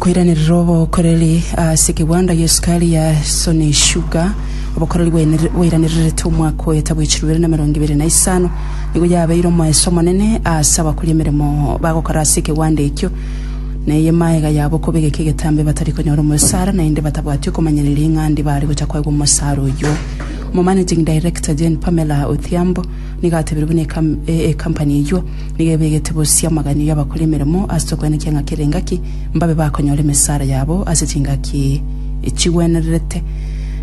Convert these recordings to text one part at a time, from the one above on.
Koiranerera obokoreri ase ekegwanda gia esukari ya Sony Sugar, obokoreri bwainere- bwairanereretwe omwaka oyo etabwechirwe bibere na emerongo ibere na isano, nigo yabeire omoeso omonene ase abakori emeremo bagokora ase ekegwanda ekio, na eye maega yabo kobegeka egetambe batari konyora omosara, naende batabwati okomanyereria ing'andi bare gocha koegwa omosara oyio. Omomanaging Director Jane Pamela Odhiambo, Nigo atebire buna ekampani eyio nigo ebegete bosio amaganio y'abakore emeremo ase tokwenekia ng'a kera engaki mbabe bakonyora emesara yabo ase chingaki chigwenererete,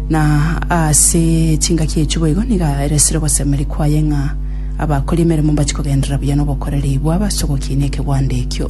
na ase chingaki echio boigo nigo aeresire ogosemeria kwaye ng'a abakori emeremo mbache kogenderera buya nobokoreri bwabo ase ogokiinia ekegwando ekio.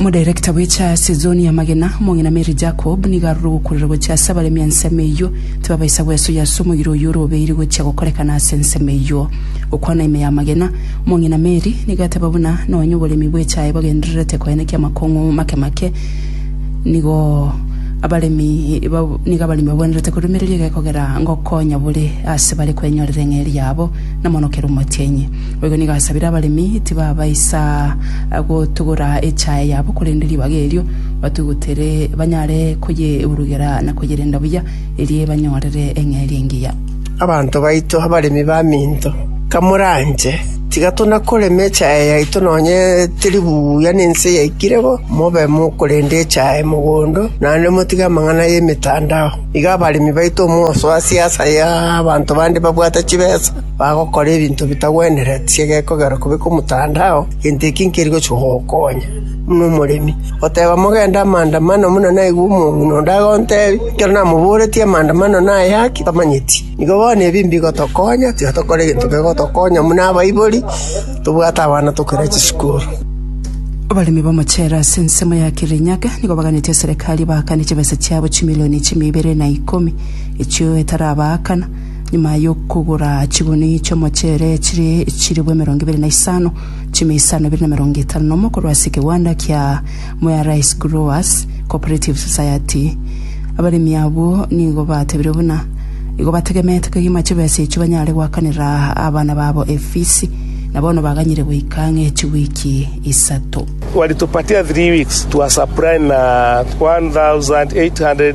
Omodirector bwe cha sizoni y'amagena, omong'ina Mary Jacob, nigo aroro gokurera gochia ase abaremi ensemo eyio. Tibabaisa gwesoyia ase omoyiro oyio ore obeiri gochia gokorekana ase ensemo eyio. Gokwana ime y'amagena, omong'ina Mary nigo ateba buna nonye oboremi bwe chae bagendererete koenekia amakong'u make make, nigo abaremi nigo abaremi babwenerete korumereria egekogera ngokonya bore ase bare kwenyorera eng'eria yabo namonokera omotienyi. Boigo nigo asabire abaremi tibabaisa gotugora echae yabo, korende ribaga erio batugutere banyare koyeburugera na koyerenda buya, erio ebanyorere eng'eria engiya. Abanto baito abaremi baminto, kamoranche, tiga tonakoreme echae yaito nonye teri buya nense yaikire bo, mobe mokorenda echae mogondo, naende motige amang'ana y'emetandao. Iga abaremi baito omosoa siasa y'abanto bande babwate chibesa. bagokora ebinto bitagwenereti egekogera kobeka omotandao, gento eki nkeri gochia gokonya. Buna omoremi oteba mogende amaandamano buna naigwe omong'ina onde agontebia, ekero namoboretie amaandamano naye ake, tamanyeti. Nigo bono ebi mbigotokonya, tiga tokora egento kegotokonya buna abaibori, tobwate abana tokore chisukuru. Abaremi b'amachere ase ensemo ya Kirinyaga nigo baganetie serikari baakane chibesa chiabo chimilioni chimia ibere na ikomi, echio etarabaakana. Nyuma y'okogora chiguni chi'omochere chire chiribu emerongo ebere na isano, chime isano ebere na emerongo etano nomo korwa ase ekegwanda kia Mwea Rice Growers Co-operative Society. Abaremi abwo nigo batebirie buna igo bategemeete kegima chibesa echio banyare goakanera abana babo efisi, na bono baganyire goika ang'e chiwiki isato. Walitupatia three weeks, tuwasupply na 1,800